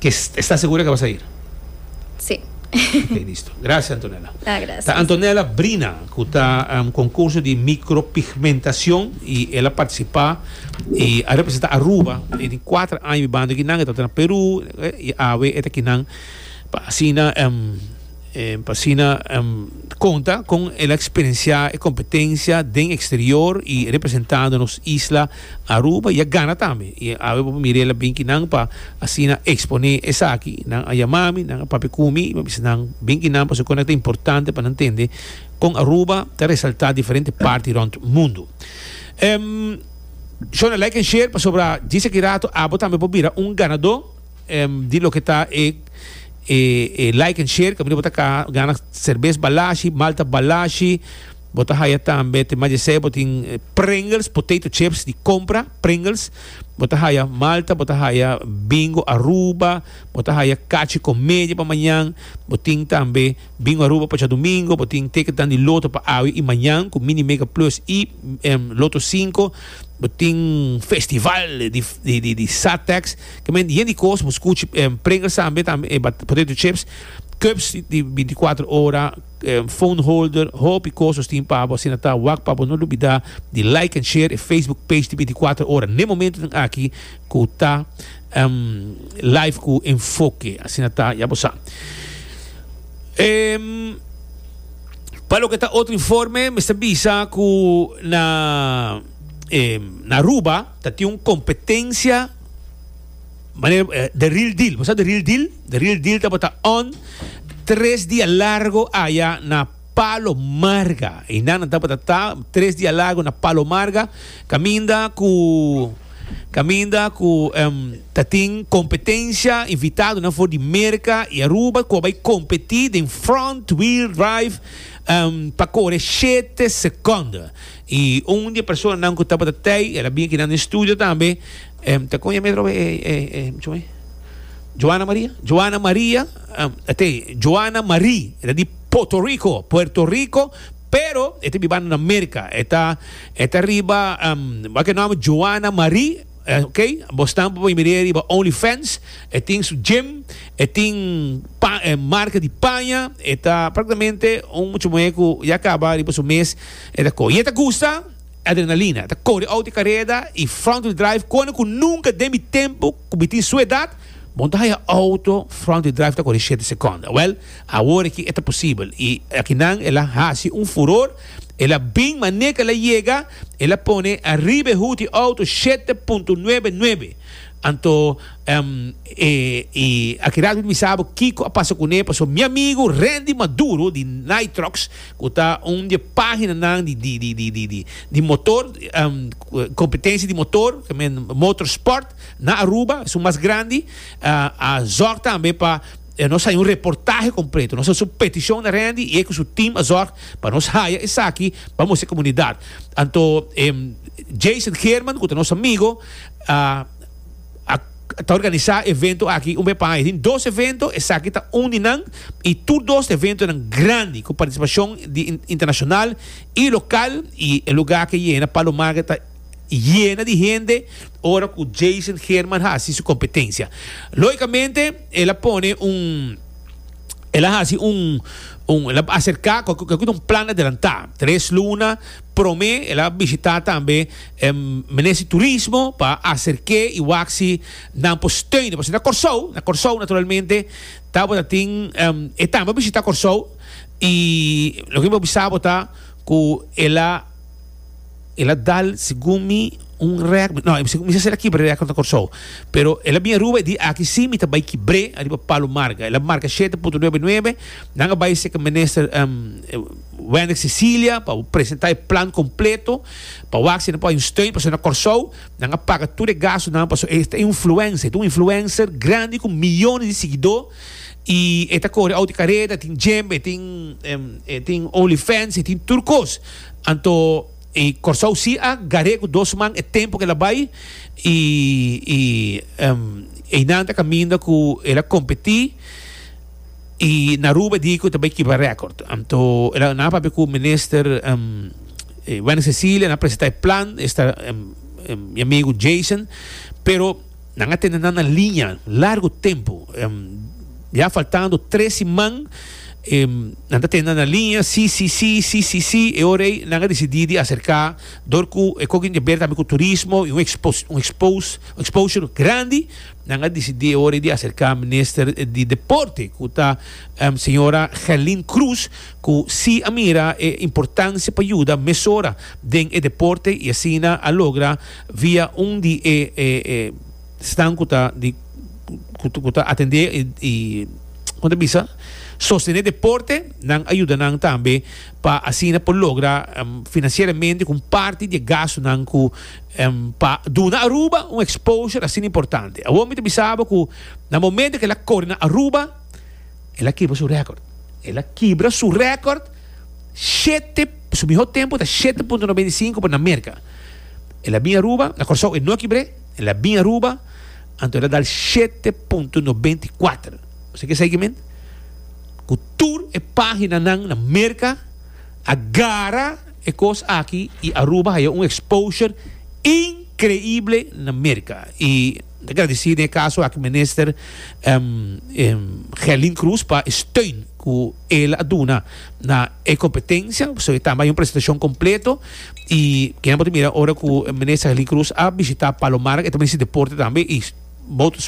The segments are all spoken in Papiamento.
Ke esta segura ke a basa ir? Sí. Oké, listo. Gracias, Antonella. Ah, gracias. Ta Antonella Brina, ku ta um, konkurso di mikropigmentacion, i el a partisipá i a representá Aruba den e kuater aña mi banda kinan, e tabata na Peru, e, i awe e ta kinan pa asina um, eh, pa asina um, konta kon el a eksperensiá e kompetensia den eksterior i representando nos isla. Aruba ya gana tambe y awe bo pa mira el a bin ki nan pa asina expone esaki y nan a yama mi nan a papia cu mi y mi a bisa nan bin ki nan pasobra cu nan ta importante pa nan tende con Aruba ta resalta diferente parti rond mundo. Shona like en share pasobra djis aki rato abo tambe por bira un ganado di loke ta e e like en share caminda bo ta gana cervez balashi, malta balashi, Bo ta haya tambe te mas esei bo tin Pringles potato chips di compra Pringles bo ta haya Malta bo ta haya Bingo Aruba bo ta haya cachi con media pa mañan bo tin tambe Bingo Aruba pa Chadomingo bo tin ticket dan di loto pa awe y mañan cu mini mega plus y loto cinco bo tin festival di di satex kiba mente yen di cos bo scuchi Pringles tambe potato chips cups di binti cuatro ora phone holder hopi cos nos tin pabo asina ta wak pabo no lubida di like and share e facebook page di binticuater ora n'e momentonan aki cu ta live cu enfoke asina ta ya bo sa pa loke ta otro informe mester bisa cu na na aruba ta tin un competencia Manera, eh, the real deal. Bo sa the real deal? The real deal tabata on tres dia largo aya na Palo Marga. Y nana tabata ta tres dia largo na Palo Marga. Caminda cu caminda cu um, tatin competencia invitado na for di Merca y Aruba cu bay competi den front wheel drive um, pa corre siete seconden. Y un di e personanan cu tabata tey, el a bini aki dando estudio tambe, ta con e mesra hopi e, chuma ey? Joana Maria? Joana Maria, te, Joana Marie, e ta di Puerto Rico, Puerto Rico, pero e ta bibando na Merca, e ta, e ta riba, bak e nomber Joana Marie, ok, bo stampa pa mi mira riba Only Fans, e tin su gym, e tin pa, marca di paña, e ta practicamente un muchamuey cu ya caba riba su mes. E ta koe. I e ta gusta adrenalina. E ta kore outi kareda i front-wheel drive kona ku nunka den mi tempu ku mi tin su edat bon ta haya outo front-wheel drive ta kore shete sekonda. Wèl, awor aki e ta posibel i akinan e la hasi un furor, e la bin manera ku e la yega, e la pone ariba e hut di outo shete punto nuebe nuebe. Anto, ehm, e i aki rato mi ta bisa bo kiko a pasa kuné paso mi amigu Rendy Maduro di Nitrox, cu ta un di e paginanan di motor, competencia di motor, motor sport, na Aruba, esun mas grandi, a zorg tambe pa nos haya un reportahe completo. Nos a haci un peticion na Randy y e cu su team a zorg pa nos haya esaki pa mustra e comunidad. Anto, Jason Geerman, cu ta nos amigo, a. a ta organisá evento aki un be paña. E tin dos evento, esaki ta un di nan i tur dos eventonan grandi ku partisipashon di internashonal i lokal i e lugá ke yena Palo Market ta yena di hende ora ku Jason Herman hasi su kompetensia. Loikamente el a pone un el a hasi un un el a aserká kualke kualke un plan adelantá tres luna, Prome el a bishita tambe Ministri Turismo pa aserke i wak si nan por steun e pasobra na Kòrsou, na Kòrsou naturalmente tabata tin e tambe a bishita Kòrsou i loke mi por bisa bo ta ku el a el a dal segun mi un rèk no mi sa ser a kibr'e rèkòrd na Kòrsou pero el a bini Aruba e di aki si mi ta bai kibr'e ariba Palo Marga el a marka shete punto nuebe nuebe nan a bai seke Minister. Wendrick Cecilia pa presenta e plan completo pa wak si nan por hay un steun pasobra na Corsou nan a paga tur e gastonan pasobra e ta un influencer, e ta un influencer grandi cu millones di siguidor y e ta cori auto careda, e tin gym, e tin e tin onlyfans, e tin tur cos. Anto y Corsou si a gar'e cu dos man e tempo cu el a bay y y eynan ta caminda cu el a competi. Y na Aruba e di cu ta bay kiba record. Anto el a na papia cu minister Wendy Cecilia, nan a presenta e plan, esta mi amigo Jason, pero nan a tene nan na linea largo tempo, ya faltando tres siman nan ta tene nan na linea, si, si, si, si, si, si, e ora ey nan a decidi di acerca dor cu e coge tin que ber tambe cu turismo y un expo, un expo, exposure grandi. Nan a disidí e ora ei di aserká minister di deporte ku ta señora Gerlin Croes ku si a mira e importansia pa yuda mesora den e deporte i asina a logra via un di e snan ku ta di ku ta atendé i kon ta bisa sostené deporte nan a yuda nan tambe pa asina por logra finansieramente ku un parti di e gastunan ku pa duna Aruba un exposure asina importante. Awor mi ta bisa bo cu na momento cu el a cori na Aruba, el a kibra su record. El a kibra su record, shete, su miho tempo ta shete punto noventa i sinku pa na Merca. El a bin Aruba, na Corsou e no a kibre, el a bin Aruba, anto el a dal shete punto noventa i kuater. Ose ke seigimen? Cu tur e paginanan na Merca a gara. E kos aki y Aruba haya un exposure increible na Merca. Y ta agradici den e caso aki Minister Gelin Croes pa e steun cu el a duna na e competencia. Pasobra e tambe haya un presentacion completo. Y kende por ta mira ora cu Minister Gelin Croes a bishita Palomarga e ta misti deporte tambe y moto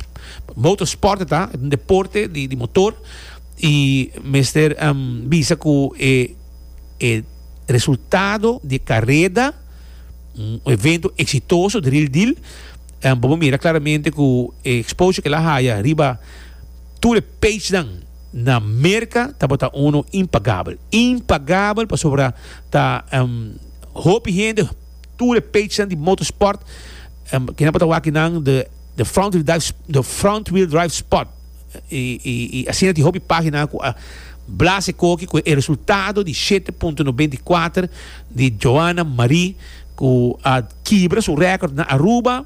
moto sport ta e ta un deporte di motor y mester bisa cu e. e resultado di e careda, un evento exitoso dril dil, bo por mira claramente cu e exposure cu el a haya riba tur e pagenan na Merca tabata uno impagabel, impagabel pasobra ta hopi hende, tur e pagenan di motorsport, kinan por ta wak kinan de front wheel drive sport. y asina tin hopi pagina cu a blase coki cu e resultado di shete punto noventa y kuater di Joana Marie cu a kibra su record na Aruba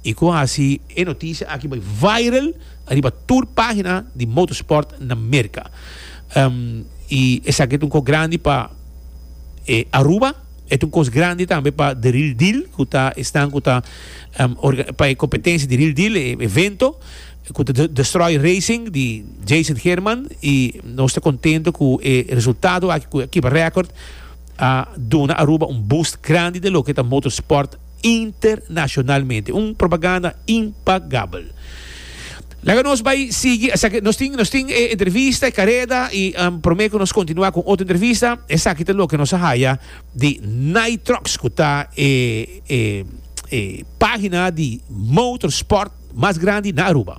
y cu a haci e noticia aki bay viral ariba tur pagina di motorsport na Merca. Um, y esaki ta un cos grandi pa e Aruba, e ta un cos grandi tambe pa The Real Deal cu ta esnan cu ta um, pa e competencia The Real Deal, e evento. E cu ta Destroy Racing di Jason Herman y nos ta contento cu e resultado aki cu Akiba Record a duna Aruba un boost grandi den loke ta motorsport internacionalmente. Un propaganda impagabel. Laga nos bay sigui, esaki nos tin nos tin e entrevista, e careda y prome cu nos continua cu otro entrevista, esaki ta loke nos a haya di Nitrox ku ta e e pagina di motorsport mas grandi na Aruba.